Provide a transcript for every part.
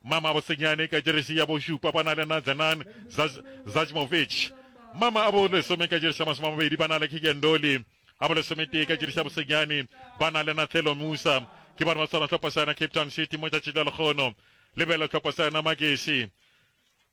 Mama Bosenyane ka jeresi ya bošupa ba na le Nadzenan Zajmovic. Mama a bolesome ka jeresi ya masome a mabedi ba na le Keagan Dolly. A bolesometee ka jeresi ya bosenyane ba na le Nathelo Musa. Ke bana ba tshwana tlhopha sa yona Cape Town City mo tšatši la lekgono. Lebelo tlhopha sa yona Magesi.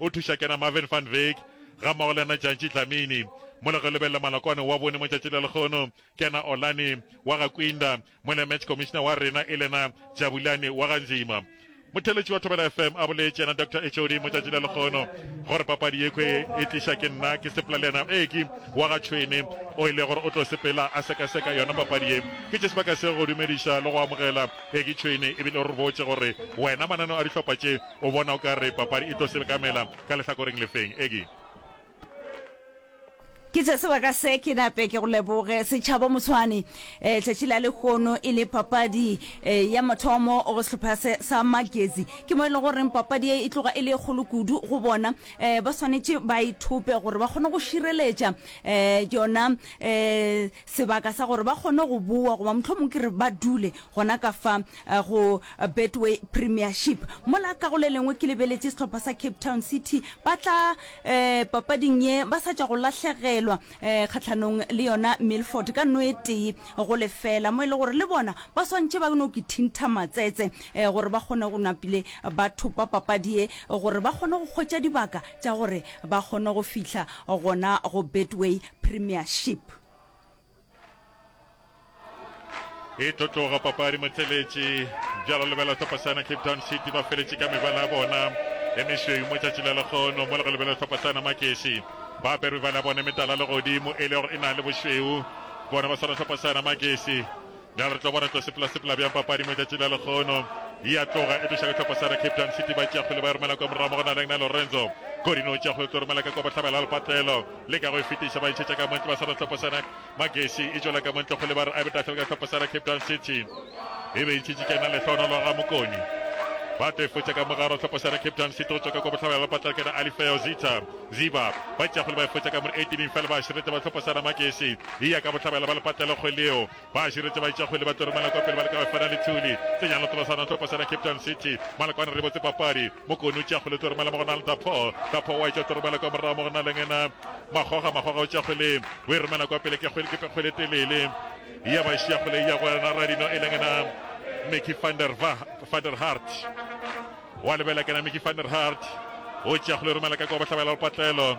O thuša kena Marvin van Wyk gammogo le yena Jantšhi Dlamini. Mo le go lebelele malokwane wa bone mo tšatši le lekgono kena Olani wa ga Kwinda mo le match commissioner wa rena elena Jabulani wa ga Nzima. Motheletši wa Thobela FM a boletše yena Doctor Echodi mo tšatši le lekgono gore papadi yekhwi e tliša ke nna ke sepela le yena Eki wa ga Tšhwene o ile gore o tlo sepela a sekaseka yona papadi ye. Ke tše sebaka se go dumediša le go amogela Eki Tšhwene ebile o re botše gore wena mananeo a dihlopha tše O bona o ka re papadi e tlo selkamela ka lehlakoreng le feng, Eggie? Ke tše sebaka se ke nape ke go leboge setšhaba moswane. Tšatši la lehono e le papadi ya mathomo go sehlopha se sa Magezi. Ke mo e le goreng papadi ye e tloga e le e kgolo kudu go bona. Ba swanetše ba ithope gore ba kgone go šireletša yona sebaka sa gore ba kgone go boa goba mohlomongwe ke re ba dule gona ka fa eh, go eh, Betway Premiership. Mola ka go le lengwe ke lebeletše sehlopha sa Cape Town City ba tla eh, papading ye ba sa tša go lahlegelwa eh, kgatlhanong le yona Milford ka no e tee go lefela mo e le gore le bona ba swantše ba no ke thintha matsetse eh, gore ba kgone go napile ba thopa papadi ye gore ba kgone go kgwetša dibaka tša gore ba kgone go fihla gona go Betway Premiership. e tlo tloga papadi motleletši bjalo lebela tlhopasana cape town city ba feletše ka mebala ya bona e mešweu mo tšatši la lekgono mo le go lebela tlhopasana makesi ba apere mebala ya bona metala le godimo e le gore e na le bošweu bona ba swana tlhopasana makesi Bjalo re tlo bona tlo sepela-sepela bjang papadi mo tšatši la lekgono. E a tloga e tloša ditlhopha sa Cape Town City ba tšeakgwele ba e romela kwa morago mo go na leng na Lorenzo Godino o tšeakgwele tlo romela ka kwa bohlabela lepatlelo le ka go e fetiša ba ntšhetša ka montle ba sa ditlhopha sa Magesi e tšwela ka montle kgwele ba re a betahlele ka ditlhopha sa Cape Town City e be e ntšhetše kena lehloonolo ga mokoni ba tlo e fotša ka mogaro tlhopha sa Cape Town City go tswa ka kwa bohlabela lepatlelo kena Alifeo Zita Ziba ba tšeakgwele ba e fotša ka mone 18 fela ba širete ba tlhopha sa Magesi e ya ka bohlabela ba lepatlelo kgweleo Ba širetše baitšakgwele ba tlo re Malakwa pele ba leka go efana le Thuli. Tsenyang le Tolosana o tlo posela Cape Town City. Malakwane re botse papadi. Mokone o tšea kgwele o tlo romela mo go na le Dapho. Dapho o a e tšea o tlo romela kwa morago mo go na le ngena Makgoga. Makgoga o tšea kgwele o e romela kwa pele ke kgwele ke kgwele e telele. Ya ba e šia kgwele e ya go yena Radino e le ngena Mickey van der, van der Hart. O a lebela kena Mickey van der Hart. O tšea kgwele o romela ka kwa bohlabela go Patlelo.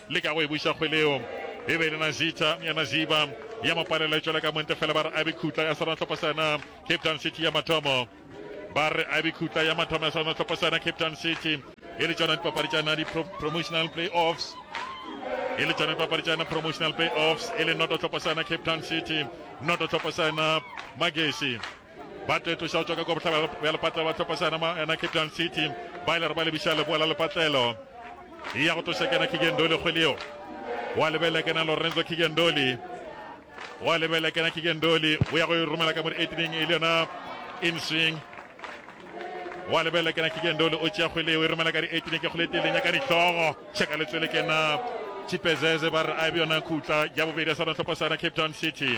Leka go e buša kgwele yeo. E be e le Nazitha ya Naziba ya mo palela tšwela ka monte fela ba re Abi Khutla ya Seratlhopo sena, Cape Town City ya mathomo. Ba re Abi Khutla ya mathomo ya Seratlhopo sena, Cape Town City. E le tšona dipapadi tša na di pro, promotional playoffs. E le tšona dipapadi tša na promotional playoffs. E le Noto Tlhopo sena, Cape Town City, Noto Tlhopo sena, Magesi. ba tlo etloša go tšwa ka kwa bohlabela bja lepatlelo ba tlhopa sana ma ena cape town city ba ile re ba lebiša leboa la lepatlelo e ya go tloša kena kigendoli kgwele yeo wa lebelela kena lorenzo kigendoli wa lebelela kena kigendoli o ya go e romela ka mo di-eighteeneng e le yona inswing wa lebelela kena kigendoli o tšea kgwele yeo e romela ka di-eighteeneng ke kgwele teleng ya ka dihlogo tšheka letswele kena chipezeze ba re a e be yona khutla ya bobedi ya sana tlhopa sana cape town city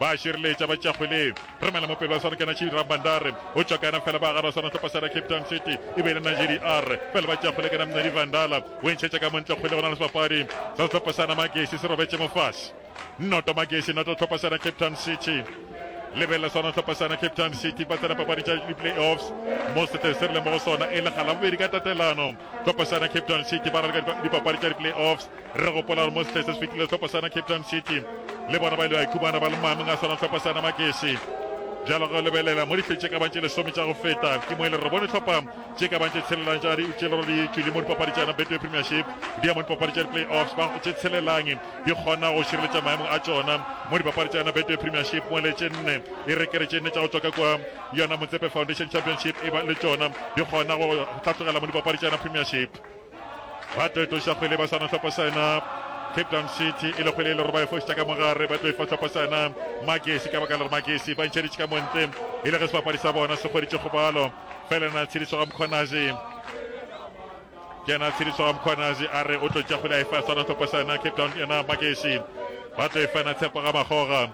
Ba šireletša ba tša kgwele. Romela mopelo wa Sarkana Chidi Rabandare o tšwa kana fela ba gaba sona topa sera Cape Town City e be le Najeri R pele ba tša kgwele kana Mnedi Vandala o ntšhetša ka montle kgwele go na le sebapadi sa sehlopha sana Magesi se robetše mofasi Noto Magesi Noto hlopha sera Cape Town City lebelela sona hlopha sana Cape Town City ba tsena papadi tša di-playoffs mo setle se re leng mo go sona e le ga labobedi ka tatelano Tlhopho sana Cape Town City ba raleka dipapadi tša di-playoffs. Re gopola gore mo sehleng se se fetilego tlhopho sana Cape Town City le bona ba ile ba ikhumana ba le maemong a swana tlhopho sana Magesi. Bjalo ge o lebelela mo dihleng tše ka bang tše lesome tša go feta, ke mo e le re bone tlhopha tše ka bang tše tshelelang tša di tše le gore di tšwile mo dipapadi tša yona Betway Premiership di ya mo dipapadi tša di-playoffs ba tše tshelelang di kgona go šireletša maemo a tšona mo dipapadi tša yona Betway Premiership mo le tše nne e re ke re tše nne tša go tswa ka kua Yona Motsepe Foundation Championship e ba le tšona di kgona go hlatlogela mo dipapadi tša yona Premiership. Ba tlo etoša kgwele ba swana hlopha sa yona Cape Town City e le kgwele e le gore ba e fošitša ka mogare ba tlo e fa hlopha sa yona Magesi ka baka le gore Magesi ba ntšheditše ka montle e le ge sebapadi sa bona se kgweditše kgobalo fela na tshediso ga Mkhonazi Kena Tshiriso ga Mkhwanazi a re o tlo tšakgwile a e fa Swana Thopasana Cape Town ena Makeši ba tlo e fa na Tshepo ga Makgoga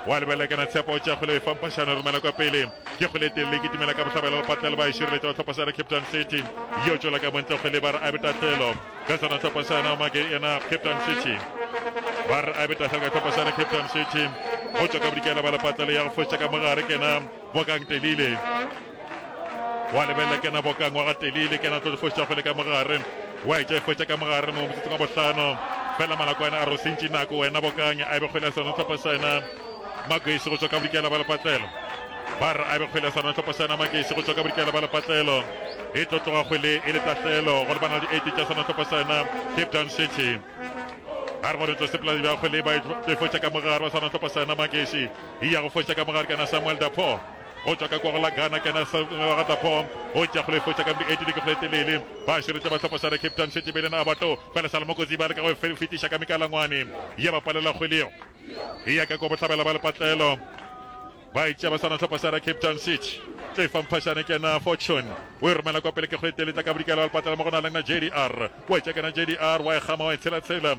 wa lebelela kena Tshepo o tšakgwile o e fa Mpashane romela kwa pele ke kgwele telele ke timela ka bohlabela go patlela ba e šireletša wa Thopasana Cape Town City yo tšola ka montle kgwele ba re a betatlelo ka Swana Thopasana make ena Cape Town City ba re a betatlelo ka Thopasana Cape Town City go tšwa ka bodikela ba le patlelo ya go fošetša ka mogare kena Bokang Telile wa lebelela kena boka ngwaga telele kena tlo difoša fele ka mogare wa etša efoša ka mogare mo motsotsong wa bohlano fela malakwane a rosentši nako wena bokang a be kgwele ya sona tlhopa sena makeisi go tšwa ka bodikela ba lepatlelo ba re a be kgwele ya sona tlhopa sena makeisi go tšwa ka bodikela ba lepatlelo e tlo tloga kgwele e le tatlelo go lebana le di-eighty tša sona tlhopa sena cape town city a re gore tlo sepoladi ba kgwele ba e tlo e foša ka mogare wa sona tlhopa sena makeisi e ya go foša ka mogare kana samuel dapo go tšwa ka kwagala Ghana ke na sengwe ga tla form go tša go le fotša ka mdi edile ke go le telele ba širetša ba tlhopo sare Cape Town šetše bele na abato pele sa le mokozi ba le ka go fe fetiša ka mikalangwane ya ba palela kgwele e ya ka kwa bohlabela ba le patlelo ba itša ba sana tlhopo sare Cape Town šetše tle fa mphashane ke na fortune o e romela kwa pele ke go le telele tla ka bodikela ba le patlelo mo go na le na JDR wa tša ke na JDR wa e gama wa e tshela tshela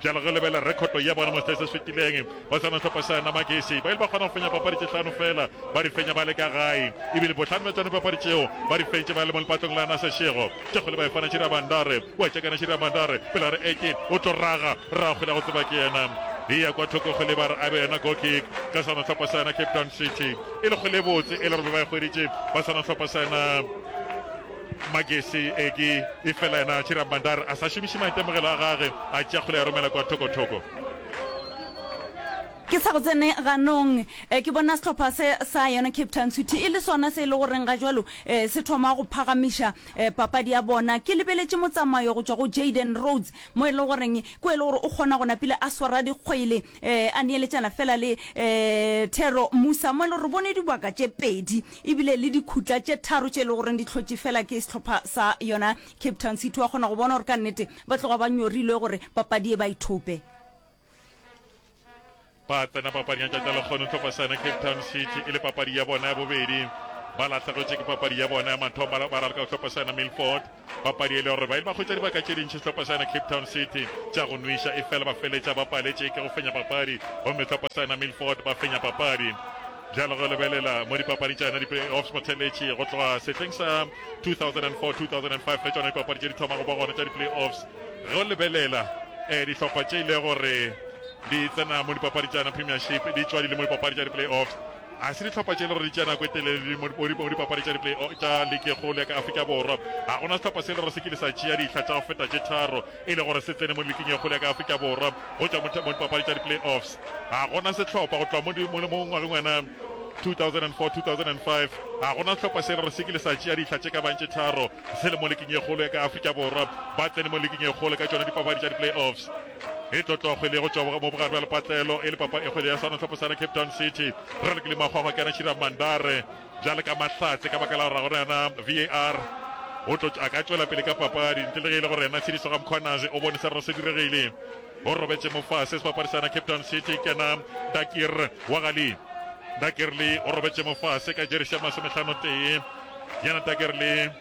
Bjale re lebelela rekhoto ya bona mo se se fetileng go sona sehlopha sa Namagesi. Ba ile ba kgona go fenya papadi tše hlano feela, ba di fenya ba le ka gae, e bile bohlano bja tšona dipapadi tšeo ba di fentše ba le mo lepatong la Naseshego. Tšekgole ba efana Chiri a Bandare, o a tšekana Chiri a Bandare, pele a re Eke o tlo raga, rraagwe la go tseba ke yena. E ya kwa thoko go leba re a be yona goal kick ka sona sehlopha sa yona Cape Town City. E le kgole e botse e le gore be ba e hweditše ba sona sehlopha sa yona. Magesi Eki, efela yena Chirambandar a sa šomiše maitemogelo a gage a tšea kgole ya romela kwa thoko-thoko. Ke sa go tsene ganong, ke bona sehlopha se sa yona Cape Town City e le sona se e le goreng ga jwalo se thoma go phagamiša papadi ya bona. Ke lebeletše motsamayo go tšwa go Jayden Rhodes mo e le goreng ko e le gore o kgona go napile a swara dikgwele. Ee, a neeletšana feela le um thero mmu samuel re bone dibaka tše pedi ebile le dikhutla tše tharo tše e le goreng di hlotše feela ke sehlopha sa yona cape town city wa kgona go bona gore ka nnete ba tloga ba nyorilwe gore papadi e ba ithope ba tsena papading ya tšatši la lekgono tlhopha sa yona cape town city e le papadi ya bona ya bobedi ba lahlegetše ke papadi ya bona ya mathomo ba ralka go tlhopha sa yona milford Papadi e le gore ba ile ba hwetša dibaka tše dintši sehlopha sa yona Cape Town City tša go nwiša efela ba feletša ba paletše ke go fenya papadi gomme sehlopha sa yona Milford ba fenya papadi. Bjale go lebelela mo dipapadi tša yona di-playoffs go theletše go tloga sehleng sa 2004-2005 ge tšona dipapadi tše di thoma go ba gona tša di-playoffs ge o lebelela um dihlopha tše ile gore di tsena mo dipapadi tša yona premiership di tšwa di le mo dipapadi tša di-playoffs Ga se dihlopha tše le gore di tšea nako e telele mo dipapadi tša di-play tša liki e kgolo ya ka Afrika Borwa. Ga go na sehlopha se le gore se kile sa tšea dihla tša go feta tše tharo e le gore se tsene mo liking e kgolo ya ka Afrika Borwa go tšwa mo dipapadi tša di-play-offs. Ga go na sehlopha go tloga mo ngwageng wana 2004-2005, ga go na sehlopha se le gore se kile sa tšea dihla tše ka bang tše tharo se le mo liking e kgolo ya ka Afrika Borwa, ba tsene mo liking e kgolo ka tšona dipapadi tša di-play-offs. e tlotlokgo e lego tšwa mo bogare bja lepatlelo e le papa e kgwele ya sanotlhopo sa na cape town city re re ke le makgwakgwa ke ana shira mandare bjale ka mahlatse ka baka la gore ga gona yona var o tlo a ka tšwela pele ka papadi ntle le ge e le gore yena tshediso ga mkhwanazi o bone se rero se diregile o robetse mofase sebapadi sa na cape town city ke na dakir wa gali dakirli o robetse mofase ka jerisi ya masometlhano tee yana dakirli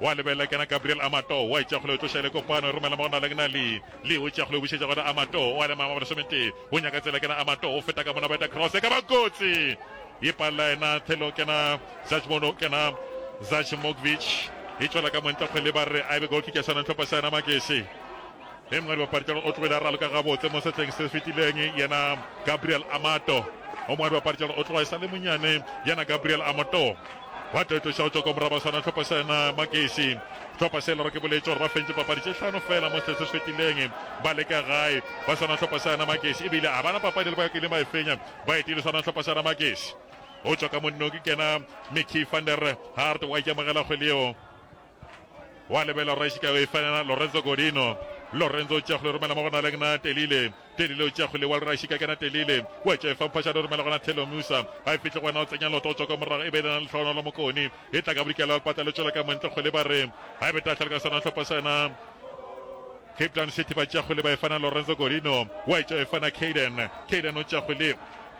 Wa lebelela kena Gabriel Amato wa itša kgole o tloša ele kopano romela mo go na lengna li li o tša kgole o bušetša gona Amato o a le mama lesometee o nyaka tsela kena Amato o feta ka mona ba eta cross e ka ba kotsi e palla ena thelo kena Zachmono kena Zachmogvich e tšwela ka montle kgwele ba re a be goal kick ya sana ntlhopa sana makese e mongwe dibapadi tša o tlogile a raloka gabotse mo setleng se fetileng yena Gabriel Amato o mongwe dibapadi tša o tloga e sa le monyane yena Gabriel Amato Ba tetoša go tšwa kwa morabaswana hlopha sa yona Magesi. Hlopha se lero ke boletše gore ba fentše papadi tše hlano fela mo setse se fetileng ba le ka gae. Ba swana hlopha sa yona Magesi ebile a bana papadi le ba kileng ba e fenya ba etile swana hlopha sa yona Magesi. Go tšwa ka monnong ke kena Mickey van der Hart wa ikamogela kgwele yeo. wa lebela rra Chicago e fela Lorenzo Godino Lorenzo o tšago le romela mo go na le na telile telile o tšago le wa le rashika kena telile wa tša fa phasha le romela gona thelo musa ga e fihle gona o tsenya loto o tswa ka morago e be lena le tlhono la mokoni e tla ka bodikela le patla le tšwela ka montle go le ba re ga e be tla tlhoka sana tlhopa sana Cape Town City ba tšago le ba e fana Lorenzo Godino wa e tša e fana Caden Caden o tšago le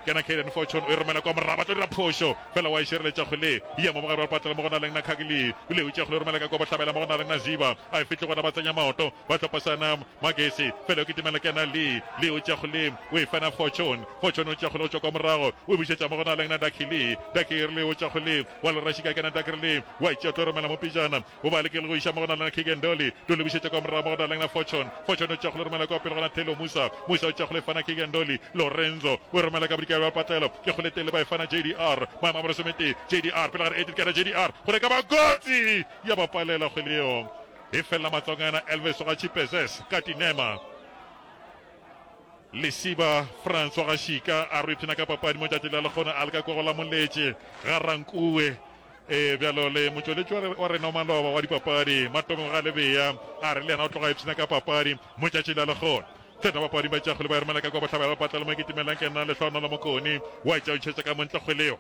Kena Kayden Fortune o e romela kwa moraba, tlo dira phošo fela wa e šireletša kgole, ya mo mogare wa patlela mo go na leng na Khagli, o le utša kgole o romela ka kwa bohlabela mo go na leng na Ziba, a e fihle gona ba tsenya maoto, ba hlopa sana Magesi, fela yo kitimela kena Lee, Lee o tšea kgole o e fena Fortune, Fortune o tšea kgole go tšwa kwa morago o e bušetša mo go na leng na Dakili, Dakirli o tšea kgole wa le rašika kena Dakirli wa e tšea tlo romela mo pejana, O ba lekile go iša mo go na lena Keagan Dolly. Dolly o bušetša kwa morago mo go na lena Fortune. Fortune o tšwakgole romela kwa pele gona Taylor Musa. Musa o tšwakgole fana Keagan Dolly. Lorenzo o e romela ka bodikela bja patlelo. Ke kgole tele ba e fana JDR. Maemo a bolesometee. JDR pele ga re Edith Kera JDR kgole ka ba kotsi ya ba palela kgwele yeo. E felela matswang a yena Elvis wa ga Chipezes ka tinema. Lesiba France wa ga Shika a re o ipshina ka papadi mo tšatši la lekgona a leka kwa go la moletše ga Rankue. Ee, bjalo le motšweletši wa re- wa rena wa maloba wa dipapadi, Matomo Galebea, a re le yena o tloga a ipshina ka papadi mo tšatšing la lehono. Feta bapapading ba tšakgwele ba ya romelaka kwa bohlabela ba patla le mo kitimelang ke nna Lehlohonolo Mokoni wa e tšautšhetša ka montle kgwele yeo.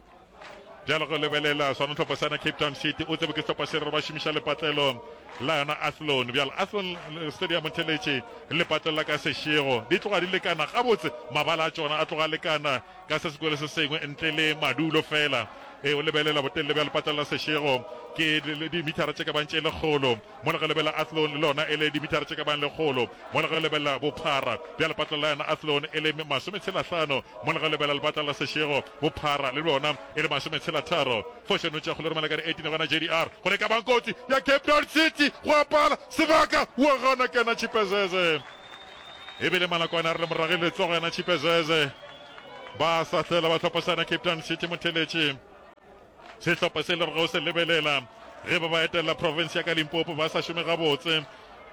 Bjalo go lebelela sona hlopha sana Cape Town City o tsebe ke sehlopha se re ba šomiša lepatlelo la yona Athlone. Bjalo Athlone eh, Stadium o theletše lepatlelo la ka sešego. Di tloga di lekana gabotse, mabala a tšona a tloga a lekana ka se sengwe le se sengwe ntle le madulo feela. Ee, o lebelela botelele bja lepatla la sešego, ke dimithara tše ka bago tše lekgolo, mola ge o lebelela Athlone le lona e le dimithara tše ka bago lekgolo, mola ge o lebelela bophara bja lepatla la yona Athlone e le masometshelahlano, mola ge o lebelela lepatla la sešego, bophara le bjona e le masometshelatharo. Foše no tšeago le romela ka di 18 gona JDR gore e ka ba kotsi ya Cape Town City go apala sebaka wa gana kena Chipezeze. e bile malakwane a re le morage letsogo yana chipe zeze ba sa hlela ba tlhopasana cape town city motheletši sehlopha se le re go se lebelela ge ba ba etelela province ya ka limpopo ba sa šome gabotse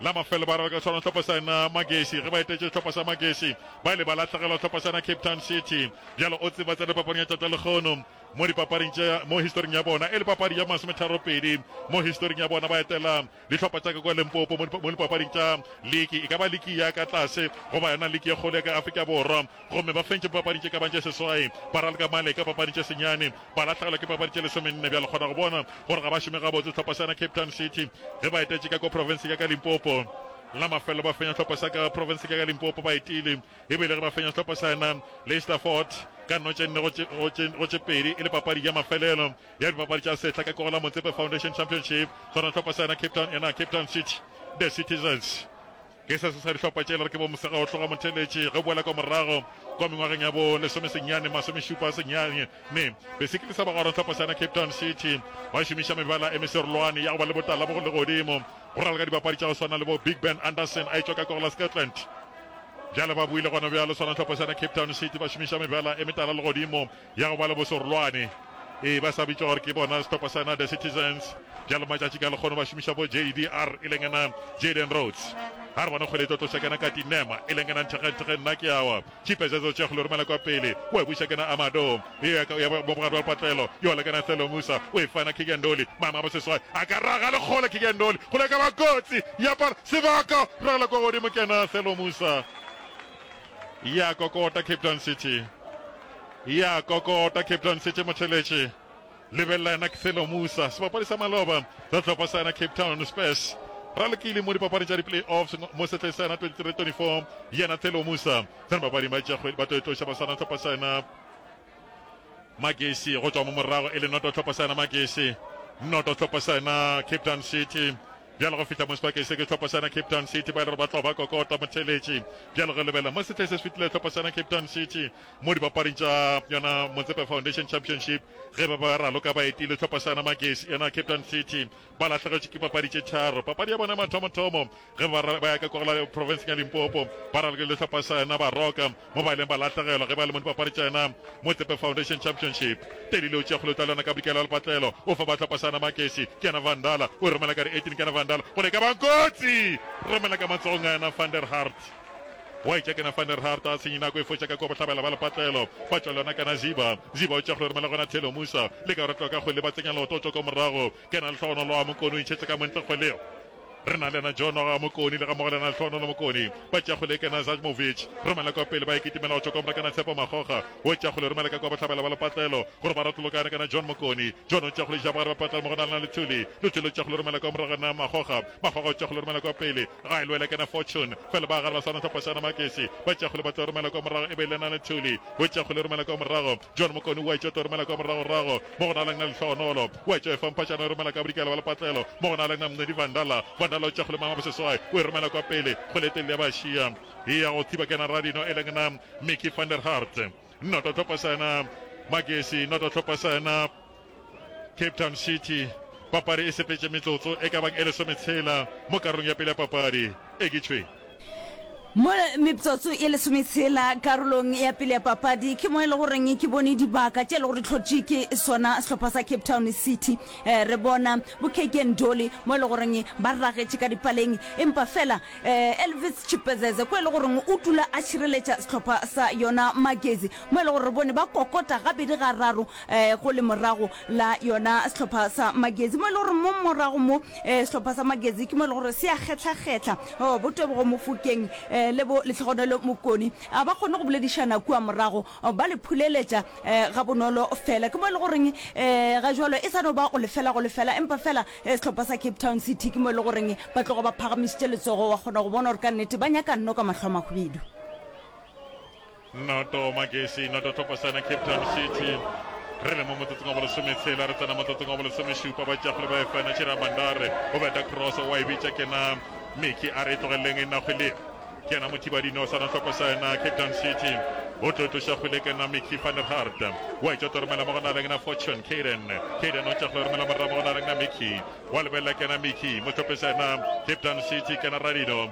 la mafelo ba rala ka tshwana tlhopha sana magesi ge ba etetše tlhopha sa magesi ba ile ba latlhegelwa tlhopha sana cape town city bjalo o tseba tsa dipapading ya tata lekgono mo dipapading tša mo historing ya bona e le papadi ya masometharo pedi mo historing ya bona ba etela Dihlopha tša ka kua Limpopo mo mo lipapading tša liki, e ka ba liki ya ka tlase goba yona liki ye kgolo ya ka Afrika Borwa, gomme ba fentše papading tše ka bago tše seswai, ba ralka male ka papading tše senyane, ba lahlegelwa ke papadi tše lesomenne. Bjale kgona go bona gore ga ba šome gabotse sehlopha sa yona Cape Town City ge ba etetše ka kua profenseng ya ka Limpopo. La mafelelo ba fenya sehlopha sa ka profenseng ya ka Limpopo ba etile, e bile ge ba fenya sehlopha sa yona Leicester Fort ka nno tše nne go tše, go tše, go tše pedi e le papadi ya mafelelo. ya dibapadi tša sehla ka Kogela Motsepe Foundation Championship, gona hlopha sa yona Cape Town ena Cape Town City The Citizens. Ke se se sa dihlopha tše e le re ke bo Mosega go tloga Motheletši ge boela kwa morago kwa mengwageng ya bo lesomesenyane masomešupa senyane ne be se kilisa ba gora hlopha sa yona Cape Town City ba šomiša mebala e meserolwane ya go ba le botala bo go le godimo go raleka dibapadi tša go swana le bo Big Ben Anderson a etšwa ka Kogela Scotland Bjale ba buile gona bjalo swana hlopha sa yona Cape Town City ba šomiša mebala e metala legodimo ya go ba le bosorolwane, ee, ba sa bitšwa gore ke bona sehlopha sa na The Citizens, bjalo matšatši ka lekgono ba šomiša bo JDR, e leng ena Jayden Rhodes. Ga re bone kgwele e tlo tloša kena ka Tinema, e leng ena Nthekgentthekge nna ke awa, Chipe Zezo Tšekgo le romela kwa pele, o e buša kena Amado, e ya ka ya bo bogadi wa lepatlelo, yo le kena Thelo Musa, o e fana Kigen Dolly, mama bo seswai, a ka raga le kgole Kigen Dolly, kgole e ka ba kotsi, ya pala, sebaka, ragela kwa godimo kena Thelo Musa. e a kokota Cape Town City, e a kokota Cape Town City, motheletše lebelela yena K'thelo Musa, sebapadi sa maloba sa tlhopha sa yena Cape Town Spurs ra lekile mo dipapadi tša di-playoffs mo setleng sa yena 23-24 yena Thelo Musa sena bapading ba tšakgwedi ba tlo etloša basana tlhopha sa yena Magesi go tšwa mo morago e le noto tlhopho sena Magesi noto tlhopho sena Cape Town City bjalo go fihla mo sebakeng se ke tlhopho sena Cape Town City ba e le gore ba tlo ba kokota motheletši bjalo go lebela mo setlheng se se fitilego tlhopho sena Cape Town City mo dipapading tša yona Motsepe Foundation Championship ge ba ba raloka ba etile tlhopho sena Magesi yona Cape Town City Ba lahlegetšwe ke papadi tše tharo. Papadi ya bona ya mathomothomo ge ba ra- ba ya ka kwa go la profenseng ya Limpopo, ba raloke le sehlopha sa yona Baroka, mo ba ileng ba lahlegelwa ge ba le mo dipapadi tša yona mo Tsepe Foundation Championship. Teddy Leo Tšekgole o tla lwana ka bodikela wa lepatlelo, o fa ba sehlopha sa yona Makesi. Ke yena Vandala, o e romela ka re 18 ke yena Vandala gole e ka ba kotsi, romela ka matsogong a yena Van der Hart. Gwa etša kena Van der Hart a senyi nako e fotša ka kwa bohlabela ba lepatlelo ba tšwa lona kana Ziba. Ziba o tša go lermela gona Thelo Musa le ka rotlwa ka kgole ba tsenya leoto o tšwa kwa morago. Kena lehlogonolo a Mokoni o itšhetša ka montle kgole. Re na lena Jono ga Mokoni le ga mogo lena lehlogonolo Mokoni ba tša kgole kena Zajmovic romela kwa pele ba e kitimela go tšwa kwa mora kana Tshepo Makgokga o tša kgole romela ka kwa bohlabela ba lepatlelo gore ba rotlolokane kana John Mokoni John o tša kgole ja bogare ba patlelo mo go na lena Lethuli Lethuli o tša kgole romela kwa morago na Makgokga ba gogotša go le romela kwa pele ga e lwela kena fortune fela ba gare ba swana tlhopashana makesi ba tša go le batla romela kwa morago e be le na le thuli o tša go le romela kwa morago john mokoni wa etša to romela kwa morago rago mo go na leng na le tlhogonolo wa etša e fampatšana e romela ka bodikela ba lepatlelo mo go na leng na mngedi vandala vandala o tša go le mama boseswai o e romela kwa pele go le telele ya ba šia e ya go thiba kena radino e leng na mickey van der hart noto tlhopashana makesi noto tlhopashana Cape Town City papadi e sepetše metsotso e ka bang e lesometshela mo karolong ya pele ya papadi e kitšhweng. Mo metsotso e lesometshela karolong ya pele ya papadi ke mo e le goreng ke bone dibaka tše e le gore tlhotše ke sona sehlopha sa Cape Town City eh, re bona bo Keke Ndoli mo e le goreng ba ragetše ka dipaleng empa fela eh, Elvis Chipezeze ko e le goreng o tula a šireletša sehlopha sa yona Magezi mo e le gore re bone ba kokota gabedi ga raro um go le morago la yona sehlopha sa magezi mo e le gore mo morago mo um sehlopha sa magezi ke mo e le gore se a kgetlhakgetlha um bo tebogo mofokeng um le bo letlhogonelo mokoni a ba kgone go boledišana kua morago ba le phuleletša um ga bonolo fela ke mo e le goreng um ga jalo e sa no ba go lefela go lefela empa fela um sehlopha sa cape town city ke mo e le goreng ba tlogo ba phagamišitše letsogo wa kgona go bona gore ka nnete ba nyaka nno ka mahlo a mahwibidu Noto Magesi, noto Thopasana, Cape Town City. Re le mo motsotsong wa bolesometsela, re tsena motsotsong wa bolesomešupa. Bajafole ba efana Chira Mandare, o beta cross, wa e bitša kena Miki a re e tlogeleleng e nna kgwele. Kena mothibadino o sana Thopasana, Cape Town City. O tlo e tloša kgwele kena Miki van der Hart. Wa e tšota romela mo go na le kena Fortune, Caden. Caden o tša kgwele romela morra mo go na le kena Miki. Wa lebelela kena Miki, mo Thopasana, Cape Town City, kena Radino.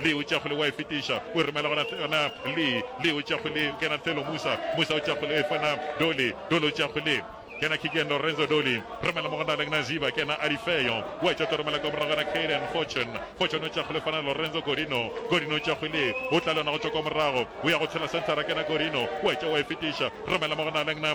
Lee o tšea kgole o a e fetiša, o e romela go Nathana. Lee, Lee o tšea kgole o kena Thelo. Musa, Musa o tšea kgole o e fa na Dolly. Dolly o tšea kgole. Kena Kigen, Lorenzo, Dolly romela mo go Nalang na Ziba. Kena Alifeo o a e tšota o romela kwa morago ga na Kaden. Fortune, Fortune o tšea kgole o fa na Lorenzo. Gorino, Gorino o tšea kgole o tla le yona go tšwa kwa morago o ya go tshela centre. Kena Gorino o a e tšea o a e fetiša romela mo go Nalang na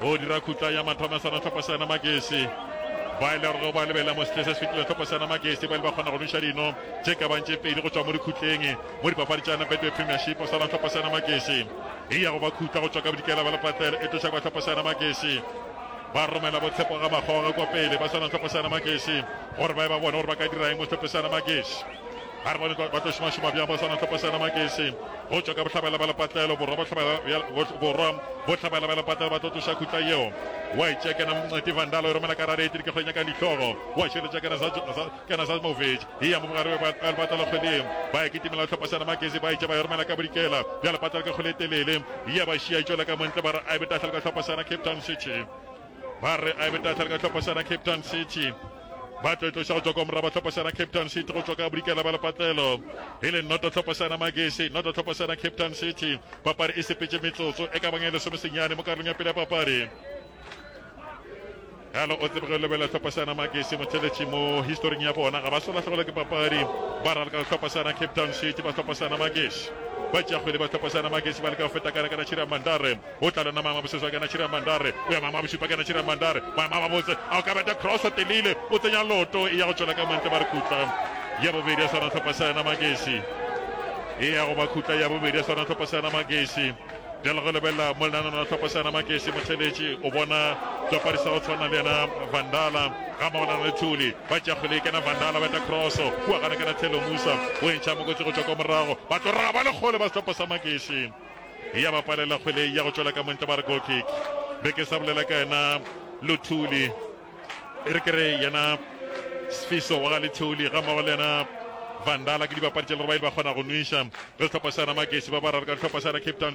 Go dira khutla ya mathomo ya sona tlhopho sena magesi ba ile gore ba lebela mo setle se se fetile tlhopho sena magesi ba ile ba kgona go noša dino tše ka bang tše pedi go tšwa mo dikhutleng mo dipapadi tšana betway premiership o swana tlhopho sena magesi e ya go ba khutla go tšwa ka bodikela ba lepatlelo e tloša kwa tlhopho sena magesi ba romela botshepo ga makgoge kwa pele ba swana tlhopho sena magesi gore ba e ba bone gore ba ka diraeng mo tlhopho sena magesi Ba re bone ba tlo šomašoma bjang ba swana tlhopo sena Makese go tšwa ka bohlabela ba lepatlelo borwa bohlabela bohlabela ba lepatlelo ba tlo tloša khutla yeo wa e tšea kena mnceti vandalo e romela ka rare etiri ke kgwenya ka dihlogo wa širetša kena za kena za movic e ya mo bogare ba lepatlelo kgweleng ba e kitimela tlhopo sena Makese ba e tšea ba e romela ka bodikela bja lepatlelo ke kgwele telele e ya ba šia e tšwela ka montle ba re a e betahlelo ka tlhopo sena Cape Town City ba re a beta tlhale ka tlhopha sa Cape Town City ba tlo tloša go tswa kwa moraba tlhopha sa Cape Town City go tswa ka bodikela ba lepatlelo e le noto tlhopha sa magesi noto tlhopha sa Cape Town City papadi e sepetse metsotso e ka bang e le somesenyane mo karolong ya pele ya papadi yalo o tsebe go lebelela tlhopha sa magesi motheletši mo historing ya bona ga ba solatlhogelo ke papadi ba rala ka tlhopha sa Cape Town City ba tlhopha sa magesi ba tšea kgwele ba tlhopha sa magesi ba le ka feta ka lekana tšhira mandare O tla lona Mama Boseswa kena Chiri ya Mandare O ya Mama Bosupa kena Chiri ya Mandare Mama ba botse a o ka beta Cross a telile o tsenya loto e ya go tšwela ka mantle ba re khutla Ya bobedi ya swana tlhopha sa yena Magesi e ya go ba khutla Ya bobedi ya swana tlhopha sa yena Magesi Bjale go lebelela mo lenanano la tlhopha sa yena Magesi motheletši o bona tswapadi sa go tshwana le yena Vandala ga mmogo le na le Thuli ba tšea kgwele e kena Vandala ba eta Cross kua gana kena Thelo Musa o e ntšha mokotsi go tšwa kwa morago ba tlo raga ba lekgole ba sehlopha sa Magesi ya ba palela kgwele ya go tšwela ka montle ba re goal kick be ke sa bolela ka yena luthuli e re ke re yena sfiso wa ga lethuli ga mmago le yena vandala ke dibapadi tša le gore ba ile ba kgona go nwiša re sehlopha sa yona magesi ba ba rare ka sehlopha sa yona cape town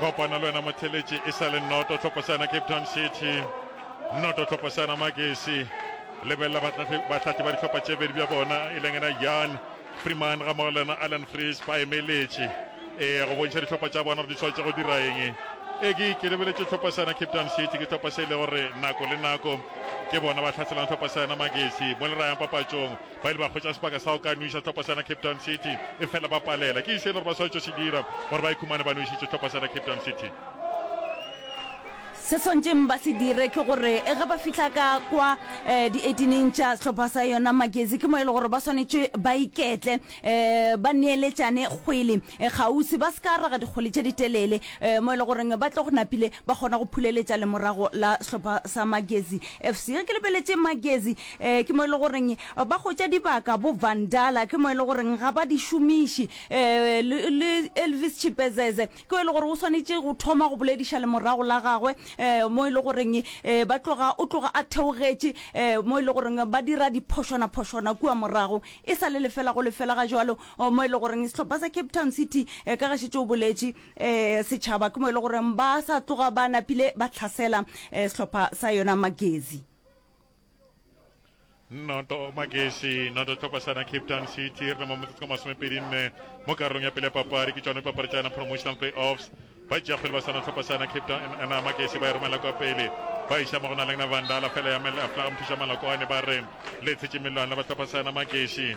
kopana le wena motheletše e sa le noto tlhoposana cape town city noto tlhoposana magesi lebelela batlati ba ditlhopha tše bedi bja bona e leng ena yan freeman ga mogo lena allan frees ba emeletše ee go bontšha ditlhopha tša bona gore di tshwanetse go dira eng e ke ke lebeletše tlhoposana cape town city ke tlhopha se e le gore nako le nako ke bona ba tlhaselang tlhoposana magesi mo le rayang papatšong Ba ile ba hwetša sebaka sa go ka nweša sehlopha sena Cape Town City, efela ba palela. Ke eng se e le gore ba swanetše go se dira gore ba ikhumane ba nwešitše sehlopha sena Cape Town City? Se swantšeng ba se dire ke gore e ge ba fihla ka kwa um di-eighteen-eng tša sehlopha sa yona magezi ke mo e le gore ba swanetše ba iketle um ba neeletšane kgwele eh, kgauswi ba se ka raga dikgwele tše ditelele um mo e le goreng ba tle go napile ba kgona go phuleletša lemorago la sehlopha sa magezi fc ge ke lebeletše magezi Ee, ke mo e le goreng ba hwetša dibaka bo Vandala, ke mo e le goreng ga ba di šomiši. Ee, le, le Elvis Chipezeze, ke o e le gore o swanetše go thoma go bolediša lemorago la gagwe, ee, mo e le goreng ee, ba tloga, o tloga a theogetše, ee, mo e le goreng ba dira diphošwana-phošwana kua morago. E sa le lefela go lefela ga jwalo, o, mo e le goreng sehlopha sa Cape Town City, ee, ka ga šetše o boletše, ee, setšhaba, ke mo e le goreng ba sa tloga ba napile ba tlhasela, ee, sehlopha sa yona Magezi. noto magesi noto tlhokosana cape town city re mo motsotso ka masomepedi nne mo karolong ya pele ya papadi ke tsone papadi tsa yona promotional play offs ba tšea kgwele ba sana tlhokosana cape town ana magesi ba e romela kwa pele ba iša mo go na le na vandala fela ya melaaflaga mothuša malakwane ba re le tshetše melwana ba tlhokosana magesi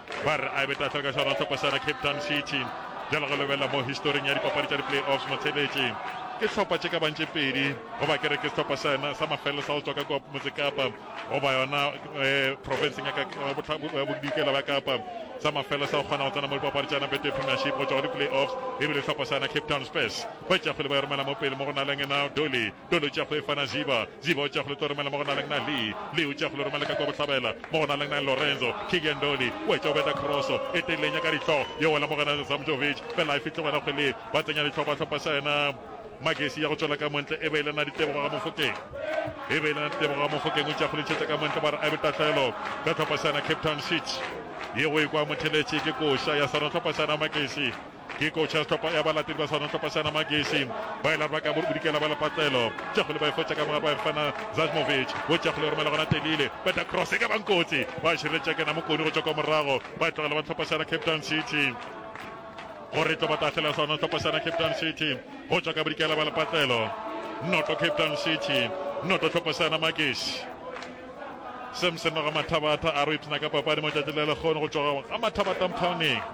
Ba re a beta fela ka šona hlopasana Cape Town City. Bjalo go lebelela mo historing ya dipapadi tša di-play-offs Motheletje ke hlopha tše ka bantše pedi goba ke re ke sehlopha sena sa mafelelo sa go tswa ka motse Kapa goba yona eh, provinceng ya eh, bodikela ba Kapa sa mafelelo sa go kgona go tsena mo dipapadi tša Betway Premiership go tswa go di-play-offs ebile hlopha sena Cape Town Spurs ba itšafele ba e romela mo pele mo go na leng ena Dolly Tolo tša go efa na Ziba, Ziba o tša go le tlo romela mo go na leng na Lee, Lee o tša go le romela ka kwa bohlabela mo go na leng na Lorenzo, Kylian Dolly o etša o beta kroso e telenya ka dihlo yo wela mo go na Zamjovic fela a fihle gona kgweleng ba tsenya dihlophahlopha sa yena Magesi ya go tšwela ka montle e be e le na Ditebogo ga Mofokeng e be e le na Ditebogo ga Mofokeng o tša go le tšhetša ka montle ba re a be tahlelo ka tlhopha sa yena Cape Town City ye go e kwa motheletše ke koša ya sa rona tlhopha sa yena Magesi Ke kotšhe ya sehlopha ya balatedi ba sona sehlopha sa Namageshi ba ile ba ka bodikela ba lepatlelo Tšakgole ba e fotša ka moga ba e fana Zajmovic bo Tšakgole o romela gona Telile beta cross e ka bang kotsi ba šireletša ke Namokoni go tšwa kwa morago ba e tlogela ba sehlopha sa Cape Town City gore tlo batahlela sona sehlopha sa Cape Town City go tšwa ka bodikela ba lepatlelo noto Cape Town City noto sehlopha sa Namageshi Samson Ramathabata a re o ipshina ka papadi mo tšatši le lekgono go tšwa ga Mathabata Mphawning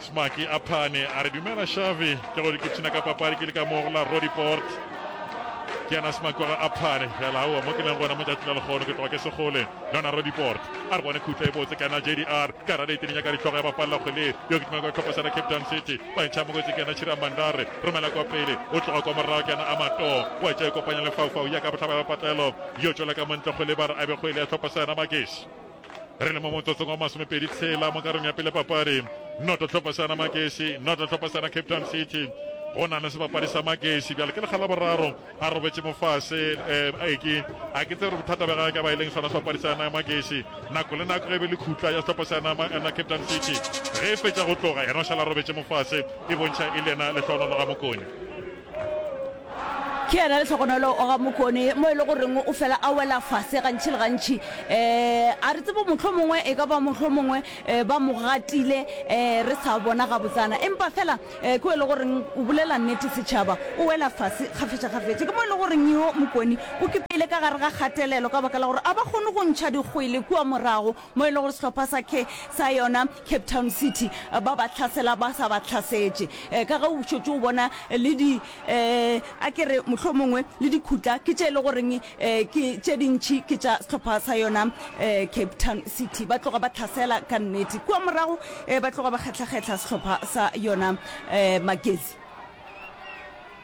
Smacky a phane a re, Dumela Xavi, ke gore ke tšhina ka papadi ke le ka mo go la Roodepoort. Ke yena Smacky wa ga Aphane, fela aowa mo ke leng gona mo tšatši la lekgono ke tloga ke se gole le yona Roodepoort. A re bone khutlo e botse ke yena JDR, ka rale e teninya ka dihlogo ya bapalela kgwele ye, yo ke tuma kwa tlhopo sa ra Cape Town City, ba ntšha mokotsi ke yena Chira Mandare, romela kwa pele o tloga kwa morago ke yena Amato, wa tša e kopanya le Faufau ya ka bohlaba ya patlelo, yo tšwela ka mo ntle kgwele ba re a be kgwele ya tlhopo sa yena Magesi. re le mo motsotsong wa masomepedi tshela mo karong ya pele papadi noto tlhophasana makesi noto tlhophasana cape town city go na le sebapadi sa makesi bjale ke lekgala boraro a robetse mo fase um eh, aeke a ke tse gore bothata ba gage ka ba e leng sona sebapadi sa yana ya makesi nako le nako ge be le khutla ya setlhopha sa yana eh, cape town city ge e fetsa go tloga yena o šala robetse mo fase e bontšha e le yena lehlohonolo ga mokone ke yena le tlhokonolo o ga mokone mo e le goreng o fela a wela fase gantšhi le gantšhi um a re tsebo motlho mongwe e ka ba motlho mongwe um ba mo gatile um re sa bona gabotsana empa fela um ko e le goreng o bolela nnete setšhaba o wela fase kgafetšakgafetša ke mo e le goreng yo mokone o kipeile ka gare ga kgatelelo ka baka la gore a ba kgone go ntšha dikgwele kua morago mo e le gore sehlopha sa ke sa yona cape town city eh, ba ba tlhasela ba sa ba tlhasetše Eh, ka ge o šotse o bona eh, le di um a ke re mohlho mongwe le dikhutla ke tše e le goreng um ke tše dintšhi ke tša sehlopha sa yona um cape town city ba tloga ba tlhasela ka nnete kua morago um ba tloga ba kgetlhakgetlha sehlopha sa yona um magezi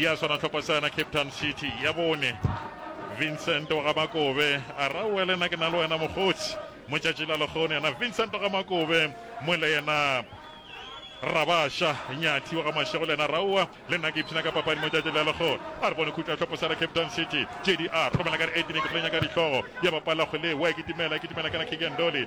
Ya swana tlhokosana Cape Town City ya bone Vincent wa ga Makobe a ra oele na ke na le wena mokgotsi motšatši la lekgone yena Vincent ga Makobe mo le yena rabasha nyathi wa ga mashego le yena raua le nna ke ipshina ka papadi motšatši la lekgone a re bone khutla tlhoposela cape town city jdr romela ka re etine ke tlo nyaka ditlhogo ya bapalla kgwele wa e kitimela e kitimela kana kikendoli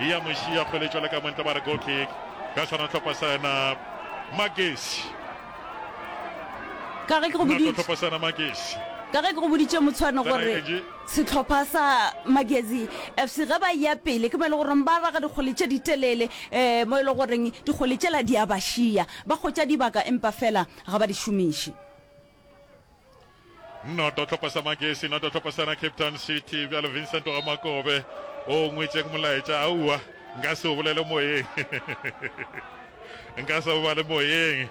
E ya moši ya kgweletšwa le ka montle ba re goal kick ka swana tlhopha sa yena Magesi. Ka ge ke go Nako boditše tlhopha sa yena Magesi. ka ge ke go boditše motshwane Kana gore Angie. sehlopha sa magezi fc ge ba ya pele ke mo e le goreng ba raga dikgole tše di telele um mo e le goreng dikgole tšela di a ba šia ba kgotša dibaka empa fela ga ba di šomiše Noto tlhoko sa Magesi, noto tlhoko sana Cape Town City, bjalo Vincent wa Makobe. O ngwetšeng molaetša, aua, nka se o bolele moyeng. nka se o bale moyeng.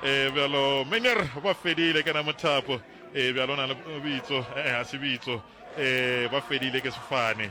E bjalo, Miner, ba fedile, kena mothapo. E bjalo, na le bitso, e, ha se bitso. E, ba fedile ke sefane.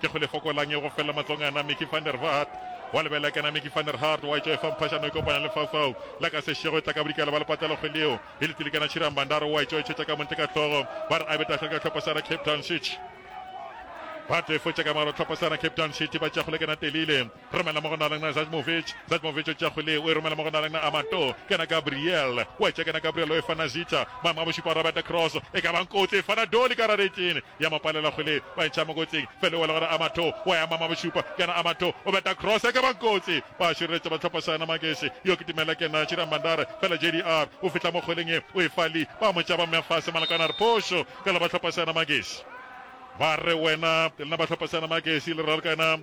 Ke go le fokolang e go fela matlong ana Mickey van der Vaart wa lebelela kana Mickey van der Hart wa etšwa e fa mphashano e kopanya le faufau la ka sešego e tla ka bodikela ba le patela kgwedi yeo e le tilikana Chirang Bandaro wa etšwa e tšhetša ka montle ka hlogo ba re a be tahlele ka tlhopha sa ra Cape Town City ba tlo e fotša ka maro tlhopha sa ra Cape Town City ba tšea go lekana telile Romela mo go na lengna Zajmovic. Zajmovic o tšea kgwele o e romela mo go na lengna Amato. Ke na Gabriel. O a tšea ke na Gabriel o e fana Zita. Maemo a bošupa Robert cross. E ka bang kotsi e fana Doli ka rareting. Ya mo palela kgwele ba e tšha mo kotsing. Fela o wela go re Amato. O a ema ma bošupa. Ke na Amato. O beta cross e ka bang kotsi. Ba šireletša ba tlhopha sa yena Magesi. Yo ke Tumela ke na Chiriang Bandar. Fela JDR o fihla mo kgweleng e o e fa Lee. Ba mo tšea ba mmea fase Malakane a re phošo. Ka la ba tlhopha sa yena Magesi. Ba re wena. Lena ba tlhopha sa yena Magesi le ralkana.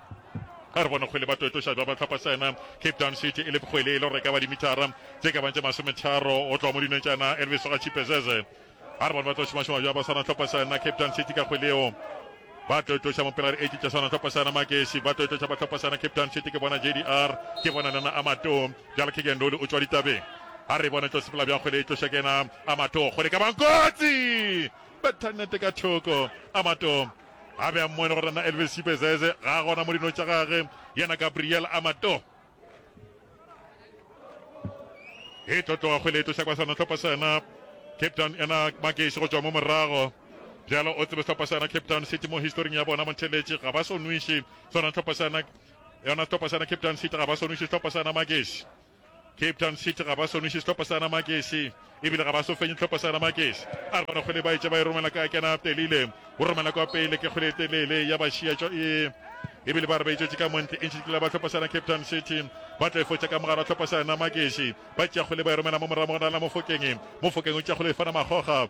Ga re bone kgwele ba toetoša bja bahlwaphasena Cape Town City e le kgwele e le gore ka ba dimithara tše ka bang tše masometharo go tloga mo dinong tšana Elvis ga Chipezeze. Ga re bone ba tlo šomašoma bja basana hlwaphasena Cape Town City ka kgweleo ba toetoša mo pela re etše tša sana hlwaphasena Magesi ba toetoša ba hlwaphasena Cape Town City ke bona JDR ke bona lena Amato bjale Kigen Loli o tšwa ditabeng ga re bone tlo sepela bja kgwele e tloša kena Amato kgwele ka bang kotsi betha nete ka thoko Amato A be a mmone gore na Elvis Sipezeze ga a gona mo dino tša gage, yena Gabriel Amato. E tlo tloga kgwele e tlo hlakwa sana tlhopha sana Cape Town ena Makeši go tšwa mo morago. Bjalo o tsebe tlhopha sana Cape Town City mo historing ya bona Montheletše ga ba sonwiše sona tlhopha sana yona tlhopha sana Cape Town City ga ba sonwiše tlhopha sana Makeši. Cape Town City ga ba soniše sehlopha sa Namakese ebile ga ba so fenye sehlopha sa Namakese a re bana kgwele ba etše ba e romela ka kena telile go romela kwa pele ke kgwele telele ya bašia tšo e ebile ba re ba itšwetše ka montle e ntšhitla ba tlhopha sana cape town city ba tla efotša ka mogare wa tlhopha sana makese ba tšeakgole ba e romela mo morago mogana la mofokeng mofokeng o tšeakgole e fana magoga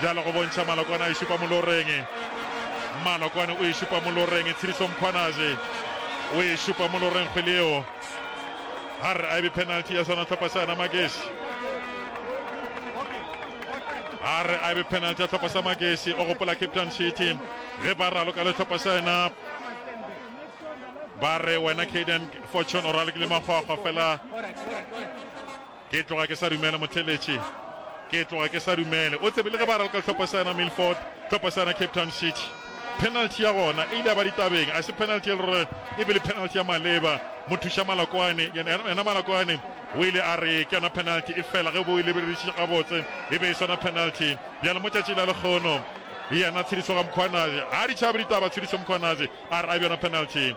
bjalo go bontšha Malokwane a e šupa moloreng Malokwane o e šupa moloreng Tshiriso Mkhwanaje o e šupa moloreng kgwele eo ga re a ebe penalty ya sona tlhopha sa yona makeši a re a ebe penalty ya tlhopha sa makeši o gopola cape town city ge ba raloka le tlhopha sa yona ba re wena caden fortune o ralokile makgwakgwa fela Ke tloga ke sa dumele, motheletši. Ke tloga ke sa dumele. O tsebe, le ge ba ralka hlopha sa yena Milford, hlopha sa yena Cape Town City, penalty ya gona e ile ya ba ditabeng. A se penalty e le gore e be le penalty ya maleba. Mothuša Malokwane, yena, yena Malokwane o ile a re ke yona penalty, efela ge bo e lebelediše gabotse, e be e sona penalty. Bjale mo tšatšing la lekgono, yena Tshediso Gamkhwanazi, ga di tšhabe ditaba, Tshediso Mkhwanazi a re a bjona penalty.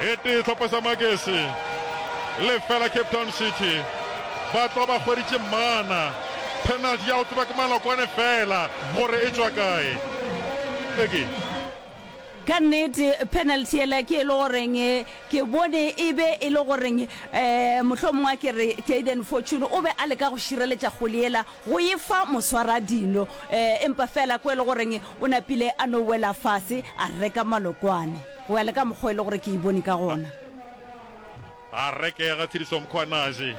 e tee tlhopha sa makese le fela cape town city ba tlo ba hweditše mana penalty ya go tseba ke malokwane fela gore e tswa kae eke ka nnete penalty ela ke e le goreng eh, ke bone e be e le goreng um eh, mohlomongwe a ke re jaden fortune o be a leka go šireletša kgoli ela go e fa moswaradino, empa feela ko e le goreng o napile a no wela fase a reka malokwane, go ya le ka mokgwa e le gore ke e bone ka gona. A rekega Tshediswa Mkhwanazi,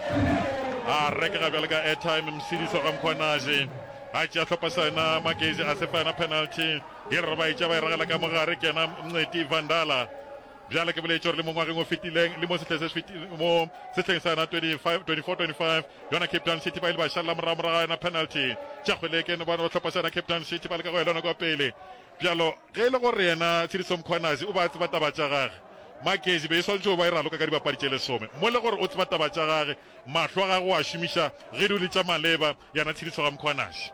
a rekega bjalo ka airtime, Msidiswa ga Mkhwanazi a tšea hlopha sa yena Magezi a se fa yona penalty, e re ba e tša ba e ragela ka mo gare, kena Mnceti Vandala Bjale ke boletše gore le mo ngwageng o fetileng le mo sehleng se fetileng, mo sehleng sa yona 24-25 yona Cape Town City ba ile ba šalela morago morago ga yona penalty. Tša Kgweleke ne bona sehlopha sa yona Cape Town City ba leka go elwa nako ya pele. Bjalo ge e le gore yena Tshediso Mkhwanazi o be a tseba taba tša gage, Magezi be e swanetše go ba e raloka ka dibapadi tše lesome. Mo le gore o tseba taba tša gage, mahlo a gagwe o a šomiša ge di le tša maleba. Yana tshedišo ga Mkhwanazi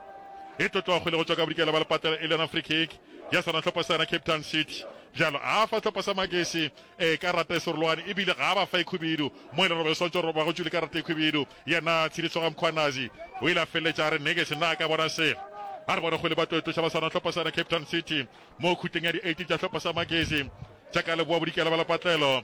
e tlotlogo le go tšwa ka bodikela ba lepatela e le yona free kick ya sona hlopha sa yona Cape Town City. Bjalo a fa hlopha sa Magesi e karata e serolwane ebile ga a ba fa e khwibidu mo e le robe swantšo roba go tšwile karata e khwibidu. Yana tshedišo ga Mkhwanazi o ile a feleletša a re negesi na a ka bona selo. A re bona go le ba tlo e tloša ba swana hlopha sa yona Cape Town City mo khutleng ya di 18 tša hlopha sa Magesi tša ka leboa bodikela ba lepatlelo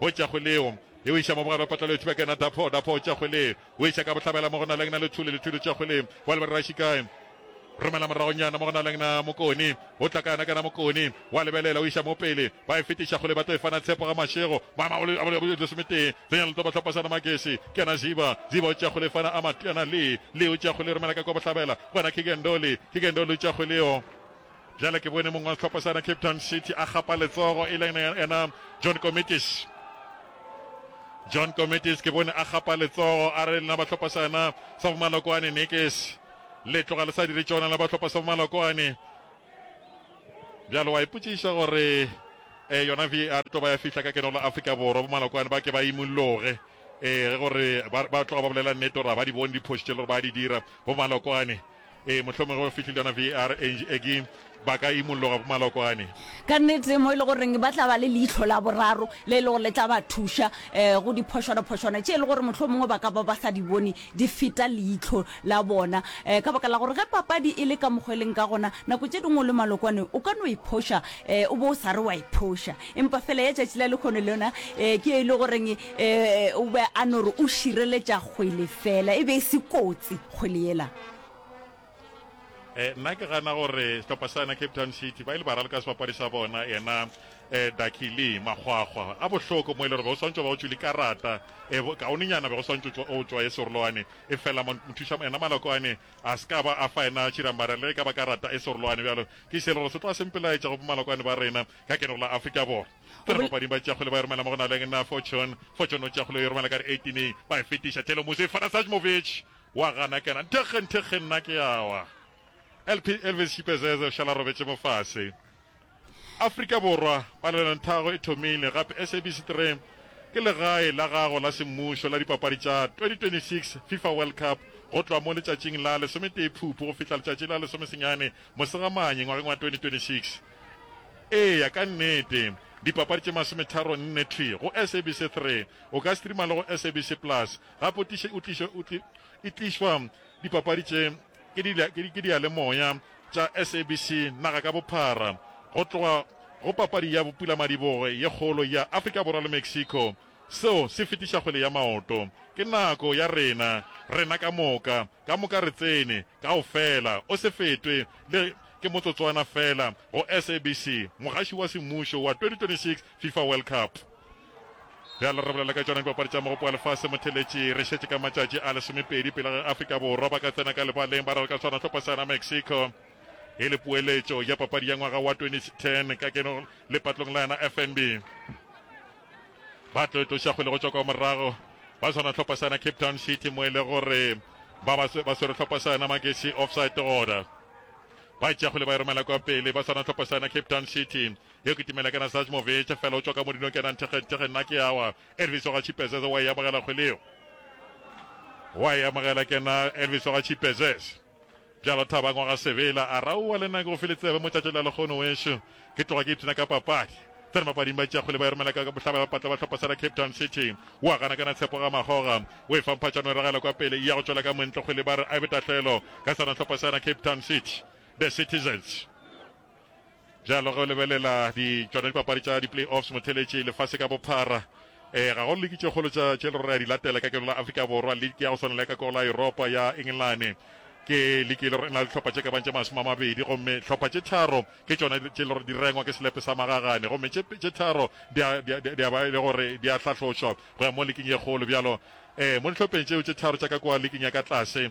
O tšwa kgole o. E o iša mo bogare wa patlalo e tšhuba ka yena Dapho, Dapho o tšwa kgole o iša ka bohlabela mo go Nalengna le Thuli, le Thuli o tšwa kgole o a le ba re ra Shikai. Romela moragonyana mo go Nalengna Mokoni o tla ka yena ka yena Mokoni o a lebelela o iša mo pele ba e fetiša kgole ba tlo e fana Tshepo ga Mashego Mama o le a lesometee Tsenya letopa tlhopasana Magesi ke yena Ziba, Ziba o tšwa kgole fana a Matiana Lee, Lee o tšwa kgole romela ka kwa bohlabela go yena Kigendoli, Kigendoli o tšwa kgole o. Bjale ke bone mong wa sehlopha sa yena Cape Town City a gapa letsogo e leng yena John Comitis. John Comitis ke bone a gapa letsogo a re lena bahlopha sa yena sa bomalokoane nekes le tloga le sa dire tšona la bahlopha sa bomalokoane. Bjale wa ipotsiša gore eh, yona VAR e tlo ba ya fihla ka keno la Afrika Borwa bomalokoane ba ke ba imolloge eh, ge gore ba, ba tloga ba bolela nnete gore ba di bone diphoši tše le gore ba di dira bomalokoane Ee, mohlomongwe ge o fihlile yona VAR Angie Eggie ba ka imolloga bomalokwane. Ka nnete mo e le goreng ba tla ba le leihlo la boraro le e le gore le tla ba thuša um go diphošwanaphošwana tše e le gore mohlomongwe ba ka ba ba sa di bone di feta leihlo la bona um ka baka la gore ge papadi e le ka mokgwa e leng ka gona nako tše dingwe o le malokwane o ka no e phoša um o bo o sa re wa e phoša empa fela ya tšatši la lekgono le yona um ke e le goreng Ee, o be a no re o šireletša kgwele fela, e be e se kotsi kgwele yela. Eh, nna ke gana gore sehlopha sa yena cape town city ba ile ba raloka sebapadi sa bona yena um eh, dakile makgwakgwa a bohloko mo e le gore be go swantse ba go tswile karata eh, um kaonenyana be go swantse o tswa e serolwane e fela mothusa yena malakoane a se ka ba a fa yena tšhiramara le ka ba karata e serolwane bjalo ke se le gore se tloa sempelaetša go malakoane ba rena ka kenelo la afrika borwa Go bol- Bapapading ba tšakgwele ba e romela mo go naleng na Fortune. Fortune o tšakgwele o e romela ka re 18 ba e fetiša Telo Musi e fana Sajmovic wa gana kena nthekge nthekge nna ke awa. LP Elvis Shipezeze o šala robetše mo fase. Afrika Borwa, palelonthaago e thomile gape SABC 3 ke legae la gago la semmušo la dipapadi tša 2026 Fifa World Cup go tloga mo letšatšing la lesometee Phupu go fihla letšatši la lesomesenyane Mosegamane ngwageng wa 2026. Eya ka nnete. Dipapadi tše masometharo nne thwi go SABC Three. O ka streama le go SABC Plus. Gape o tliše o tliše o tli e tlišwa dipapadi tše ke di ke ke diyalemoya tša SABC naga ka bophara go tloga go papadi ya Bopulamadibogo ye kgolo ya Afrika Borwa le Mexico. Seo se fetiša kgwele ya maoto. Ke nako ya rena, rena ka moka. Ka moka re tsene kaofela, o se fetwe le ke motsotswana feela, go SABC, mogaši wa semmušo wa 2026 Fifa World Cup. Bjale re bolela ka tšona Dipapadi tša Mogopo wa Lefase Motheletši. Re šetše ka matšatši a lesomepedi pele ge Afrika Borwa ba ka tsena ka lebaleng ba rera ka tshwana hlopha sa yona Mexico e le poeletšo ya papadi ya ngwaga wa 2010 ka keno lepatlong la yona FNB. ba tlo etloša kgwele go tšwa kwa morago ba swana tlhopha sa yona cape town city mo e le gore ba ba ba swere tlhopha sa yona magesi offside order ba e tšea kgwele ba e romela kwa pele ba swana tlhopha sa yona cape town city yo ke timela kana sajmovic fela o tswa ka modinong kenang thekgentege nna ke awa elvis wa ga chipezeze wa e amogela kgweleo wa e amogela kena elvis wa ga chipezeze Bjalo Thabang wa ga Sebela a raowa le nna ke go file tsebe mo tšatši la lekgono wešo. Ke tloga ke ipshina ka papadi. Tsena mapading ba tšea kgwele ba e romela ka bohlaba ya bapatla ba hlopha sa la Cape Town City. O a gana kana Tshepo Gamakgoga. O e fa mphatšano e ragela kwa pele e ya go tšwela ka moentlo kgwele ba re a be tahlelo ka sona hlopha sa na Cape Town City. The Citizens. Bjalo ge o lebelela di tšona dipapadi tša di-play-offs motheletši lefase ka bophara, ee, ga go liki tše kgolo tša tše e le go re a di latela ka keno la Afrika Borwa, liki ya go swana le ya ka koo la Yuropa ya Engelane. Ke liki e le go re e na le dihlopha tše ka bago tše masome a mabedi gomme hlopha tše tharo ke tšona tše e le go re di rengwa ke selepe sa magagane gomme tše tše tharo di a, di a, di a ba e le go re di a hlahlotšwa go ya mo liking ye kgolo. Bjalo ee, mo dihlopheng tšeo tše tharo tša ka kua liking ya ka tlase,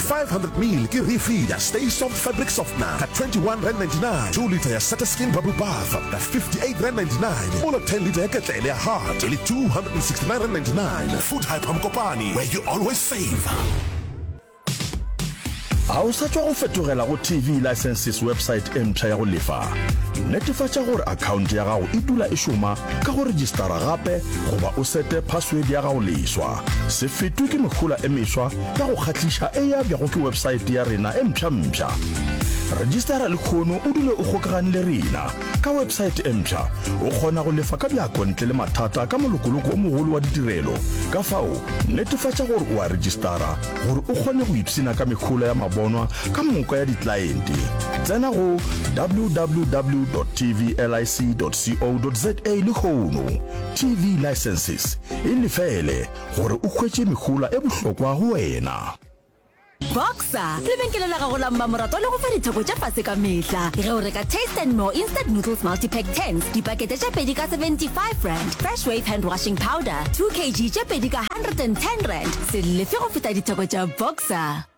500 ml ke refill ya Stay Soft Fabric Softener ka 21 rand 99, 2 litre ya Seta Skin Bubble Bath ka 58 rand 99, mola 10 litre ya Ketlele ya Heart e le 269 rand 99. Food Hyper Mokopane, where you always save. ga o sa tšwa go fetogela go tv licenses website e mpsha ya go lefa netefatša gore akhaonte ya gago e dula e šoma ka go registara gape goba o sete password ya gago leswa se fetwe ke mehola e meswa ka go kgahliša e ya bjago ke websaete ya rena e mpšhampša registara lekgono o dule o kgokagane le rena ka websaete e mpšha o kgona go lefa ka bjakontle le mathata ka molokoloko o mogolo wa ditirelo ka fao netefatša gore o a registara gore o kgone go ipsena ka mekgolo ya mabonwa ka moka ya ditlaente tsena go www tvlic co za lekgono tv licenses e lefele gore o hwetše mehola e bohlokwa go wena. Boxer, lebenkele la gago la mmamoratwa le go fa ditheko tša fase ka mehla ge o reka taste and more instant noodles multipack 10 dipakete tša pedi ka 75 rand fresh wave hand washing powder 2 kg tše pedi ka 110 rand se lefe go feta ditheko tša boxer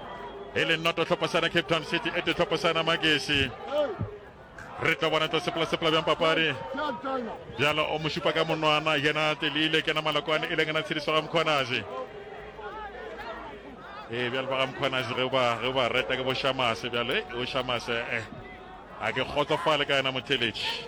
e le nnoto tlhopasana cape town city e te tlhopasana magesi re tlo bona tlo sepela-sepela bjang papadi bjalo o mošupa ka monwana yena telile kena malokwane e leng ena tshediso ga mokgonazi ee bjalo ba ga mokgonazi ge ba reta ke bo shamase bjalo e o shamase eh A ke kgotsofale ka yena motheletši.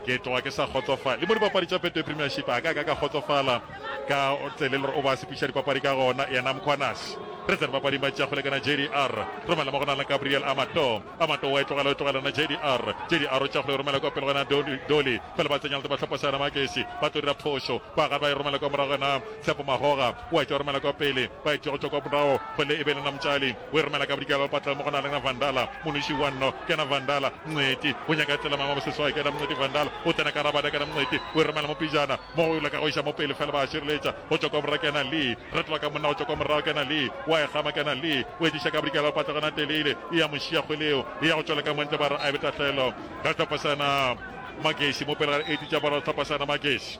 Ke tloga ke sa kgotsofale le mo dipapadi tša Betway Premiership a ka ka ka kgotsofala ka tsele le o ba sepiša dipapadi ka gona yena Mkhwanazi. Re tsene bapading ba tšeago lekana JDR. Romela mo go na le Gabriel Amato. Amato wa e tlogela o tlogelana JDR. JDR o tšeago le romela kwa pele gona Doli. Fela ba tsenya le ba tlhopa seana Makesi. Ba tlo dira phošo. Ba ga ba e romela kwa morago gona Tshepo Magoga. Wa e tšwa romela kwa pele. Ba e tšwa go tšwa kwa morago go le e be le Namtšali. O e romela ka bodikela le patlelo mo go na lena Vandala, monoši wa nno, kena Vandala, Mngweti. O nyaka tlela mama mo seswai, kena Mngweti Vandala. O tsena ka rabada, kena Mngweti. O e romela mo pejana, mo go yola ka go iša mo pele fela ba a šireletša. Go tšwa kwa borra, kena Lee. Retola ka monna, go tšwa kwa morago, kena Lee. O a e gama, kena Lee. O e diša ka bodikela le patlelo na teleile, e ya mo šiya kgweleo. E ya go tšwela ka mo ntle, ba re a ebe tahlelo. Ga tlhopha sa yena Mageši mo pele ga eighty tša bora, tlhopha sa yena Mageši.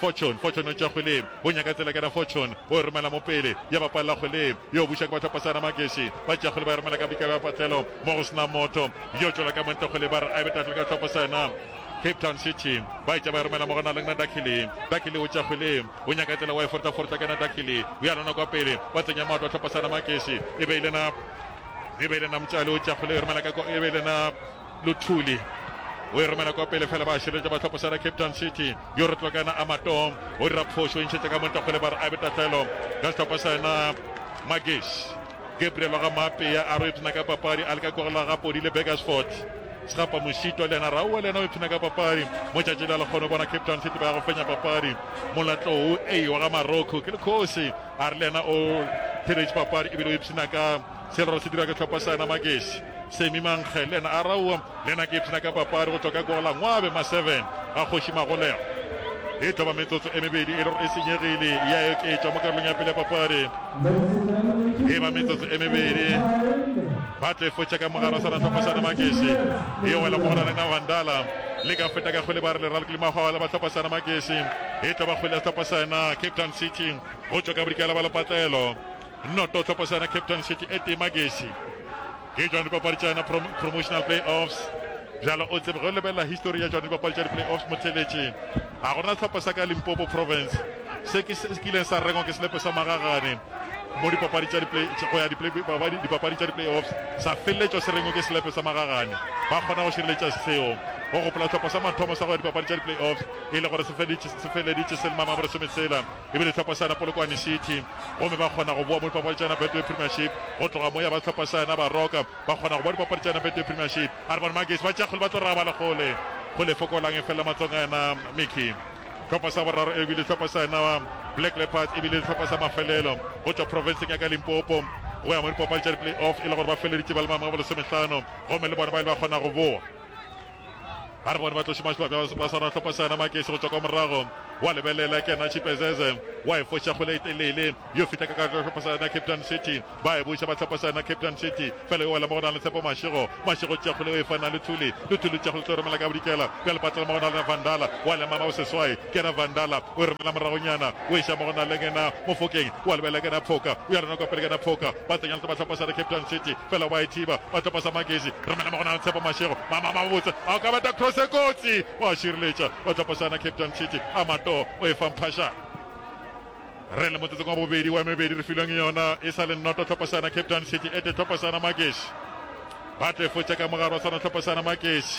Fortune, Fortune o tšwa kgwele, o nyaka tsela ka na Fortune, o e romela mo pele, ya ba palela kgwele, yo buša ke batlhopha sana Mageshi, ba tšea kgwele ba e romela ka bika ya patlelo, mo go sena motho, yo tšwela ka montle kgwele ba re a e be tatlele ka tlhopha sana Cape Town City, ba e tšea ba e romela mo go na le na Dakili, Dakili o tšwa kgwele, o nyaka tsela wa e forta forta ka na Dakili, o ya lona kwa pele, ba tsenya maoto a tlhopha sana Mageshi, e be e le na, e be e le na Mtšali o tšwa kgwele o e romela ka ko, e be e le na, Luthuli o e romela kwa pele fela ba širetša ba tlhopho sera Cape Town City yo re tlokana a matong o dira phošo ntšhetša ka montakgole ba re a be tatlelo ka setlhopha sa yena Magish Gabriel wa ga Maapea a re o ipshina ka papadi a le ka kogela ga Podile Begersford Segapa Mošito le yena ra oa le yena o ipshina ka papadi mo tšatši la lekgono bona Cape Town City ba ya go fenya papadi Molatlou A wa ga Maroko ke lekgosi a re le yena o theretše papadi ebile o ipshina ka Sello se dira ke tlhopha sa yena Magesi. Semi Mankge le yena a raua, le yena ke ipshina ka papadi go tšwa ka gola ngwabe ma 7 a Kgoši Magolego. E tlo ba metsotso e mebedi e le gore e senyegile ya oketšwa mo karolong ya pele ya papadi. E ba metsotso e mebedi ba tlo e fotša ka mogare o sa ratlhopha sa yena Magesi e wela mo go Ralena Vandala le ka feta ka kgwele ba re leralo ke limahwala ba tlhopha sa yena Magesi e tlo ba kgwele ya setlhopha sa yena Cape Town City go tšwa ka bodikela ba lepatlelo. Noto tlhopo sa yona Cape Town City e tee magesi ke Johann Dipapadi tša yona prom promotional playoffs bjalo o tsebe ge o lebelela history ya Johann Dipapadi tša di-playoffs motheletše ga gona tlhopo sa ka Limpopo province se ke se kileng sa rengwa ke selepe sa magagane mo dipapadi tša di-play go ya dipapadi tša di-playoffs sa feleletšwa se rengwe ke selepe sa magagane ba kgona go šireletša seo go gopola tlhopo sa mathomo sa go ya dipapadi tša di-playoffs e le gore se feleditše se le mamabore sometshela e bile Tlhopasana Polokwane City gomme ba kgona go boa mo dipapaditšana Betway Premiership go tloga moya ba Tlhopasana ba roka ba kgona go boa dipapaditšana Betway Premiership Urban Magesi ba tša kgole ba tlo raba le kgole go le fokolang e felela matlongana Mickey Tlhopha sa boraro e bile Tlhopasana Black Leopards e bile Tlhopha sa mafelelo go tšwa profenseng ya ka Limpopo go ya mo dipapadi tša di-play-off e le gore ba feleditše ba le maemong a bolesomehlano gomme le bona ba ile ba kgona go boa. a re bone ba tloše mahlo ka ba swara tlhopa sa yona makese go tšwa kwa morago wa lebelela ke yena chipezeze wa e foša kgole e telele yo fitlha ka ka tlhopa sa yona captain city ba e buša ba tlhopa sa yona captain city fela yo wela mo go na le tshepo mašego mašego tša kgole o e fana le thuli le thuli tša kgole tlo romela ka bodikela bjale patlela mo go na le vandala wa lemama o seswai Kena Vandala o e romela moragonyana, o iša mo go na le Kena Mofokeng, o a lebelela Kena Phoka, o ya rena kwa pele Kena Phoka, ba tsenya letsa ba tlhopa sa re Cape Town City, fela ba e thiba, ba tlhopa sa Magezi, romela mo go na le Tshepo Mashego, mama mama botse, a o ka beta cross e kotsi, o a šireletša, ba tlhopa sa na Cape Town City, Amato o e fa Mphashane. Re le motsotsong wa bobedi wa e mebedi re filweng yona, e sa le noto tlhopa sa na Cape Town City, ete tlhopa sa na Magezi, ba tlo e fotša ka mogare wa sona tlhopa sa na Magezi.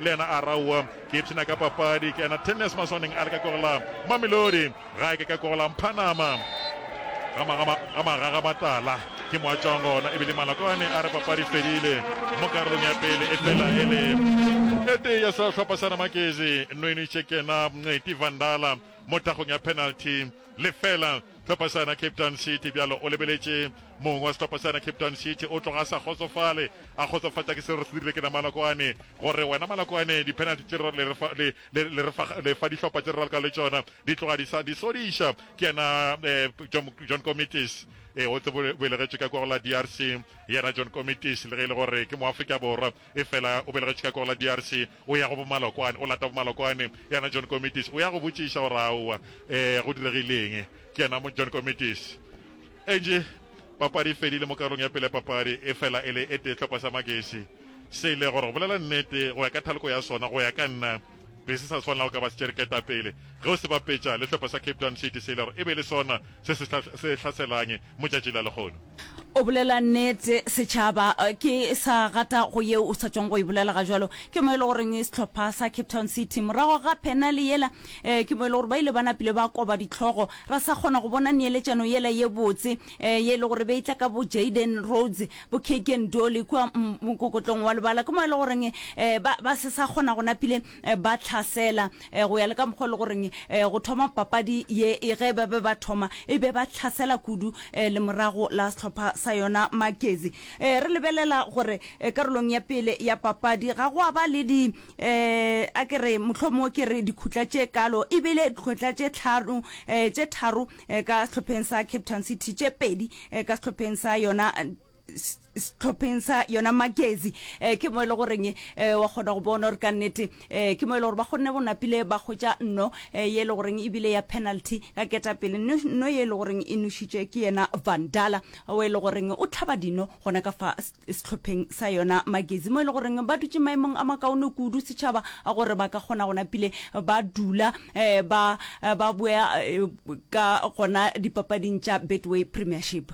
Le yena a ra, Owa, ke ipshina ka papadi, ke ena tennis maswaneng a le ka kogola Mamelodi, ga ke ka kogola Mphanama. Ga ma, ga ma, ga ma, ga ga matala. Ke mo a tšwang gona, ebile Malokwane a re papadi e fedile mo karolong ya pele, e fela e le e tee ya sehlopha sa Ramakezi. Nwenu Chekena, Mngqeti, Vandala mo thakgong ya penalty, lefela. Sehlopha sena Cape Town City bjalo o lebeletše mong wa sehlopha sena Cape Town City o tloga a sa kgotsofale, a kgotsofatša ke seo re se dirile ke na Malokwane, go re wena Malokwane di-penalty tše re le fa, le, le, le re fa, le fa dihlopha tše re ralka le tšona di tloga di sa di sodiša. Ke yena eh, John, John Comitis eh, o tsebo belegetšwe ka kwa go la DRC, yena John Comitis le ge e le gore ke moafrika borwa efela o belegetšwe ka kwa go la DRC. O ya go Bomalokwane, o lata Bomalokwane. Yena John Komitis o ya go botšiša gore aowa, ee, go diregile eng? Ke yena mo John Komitis. Angie, papadi e fedile mo karolong ya pele ya papadi, efela e le e tee tlhokwa sa Magesi se ile, gore go bolela nnete, go ya ka thaloko ya sona, go ya ka nna, be se sa swanela go ka ba se tšere ketapele. Ge o se bapetša le hlopha sa Cape Town City se ile, gore e be e le sona se se hlaselañe motšatši la lehono. O bolela nnete, setšhaba. Ke sa rata go yeo o sa tšong go e bolela ga jwalo. Ke mo e le goreng sehlopha sa Cape Town City morago ga penale yela, eh, ke mo e le gore ba ile ba napile ba koba dihlogo. Ra sa kgona go bona neeletšano yela ye botse, eh, ye e le gore be e tla ka bo Jayden Rhodes, bo Keagan Dolly kua mokokotlong wa lebala. Ke mo e le goreng, eh, ba, ba se sa kgona go napile ba tlhasela go ya le ka mokgwa le goreng go thoma papadi ye e ge ba be ba thoma e be ba tlhasela kudu le morago la sehlopha sa yona makezi re lebelela gore karolong ya pele ya papadi ga go a ba le di a ke re motlho mo ke re dikhutla tše kalo e bile dikhutla tše tlhano tše tharo ka sehlopheng sa cape town city tše pedi ka sehlopheng sa yona setlhopheng sa yona magezi um ke mo e le goreng um wa kgona go bona gore ka nnete um ke mo e le gore ba kgonne go napile ba kgotša nno um ye e le goreng ebile ya penalty ka ketapele nno ye e le goreng e nošitše ke yena vandala o e le goreng o tlhaba dino gona ka fa setlhopheng sa yona magezi mo e le goreng ba dutše maemong a makaone kudu setšhaba a gore ba ka kgona go napile ba dula um ba boya ka gona dipapading tša betway premiership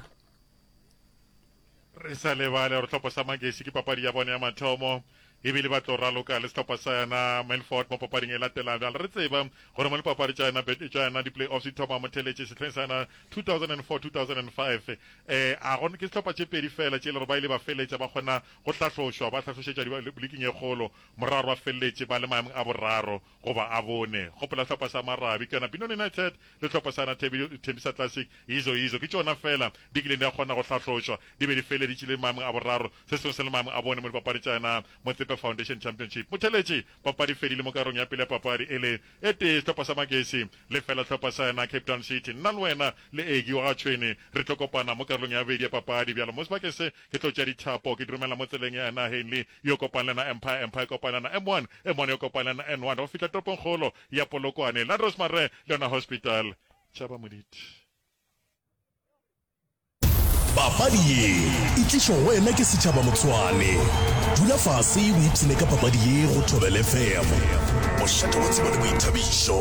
re sa lebale gore tlhopho sa magesi ke papadi ya bone ya mathomo ebile ba tlo raloka le sehlopha sa yona melford mo papading e latela bjale re tseba gore mo lipapadi tša yona bete tša yona di-playoffs di thoma motheletše sehleng sa yona 2004-2005 eh a go ke sehlopha tše pedi fela tše e le gore ba ile ba feleletša ba kgona go hlahlošwa ba hlahlošetša liking e kgolo moraro ba feleletše ba le maemong a boraro goba a bone. Gopola hlopha sa Marabi, ke yona Binoni United, le hlopha sa Nathebi, Thembisa Classic, izo izo, ke tšona feela di kileng di a kgona go hlahlošwa di be di feleditše le maemong a boraro. Se sengwe se le maemong a bone mo dipapadi tša yona Motsepe Foundation Championship. Motheletši papadi e fedile mo karolong ya pele ya papadi e le e tee sehlopha sa Magesi le fela sehlopha sa yona Cape Town City. Nna le wena le Eggie wa ga Tšhwene re tlo kopana mo karolong ya bobedi ya papadi bjalo mo sebakeng se Ke tlo tšea dithapo, ke di romela mo tseleng ya naheng le yo kopang le na Empire, Empire kopang le na M1, M1 yo kopang le na N1, go fihla toropongkgolo ya Polokwane, Landros Mare le yona Hospital. Tšaba moditi. Papadi ye e tlišwa go wena ke Setšhaba Motsoane. Dula fase o ipshine ka papadi ye go Thobela FM. Bošate wa tsebo le boithabišo.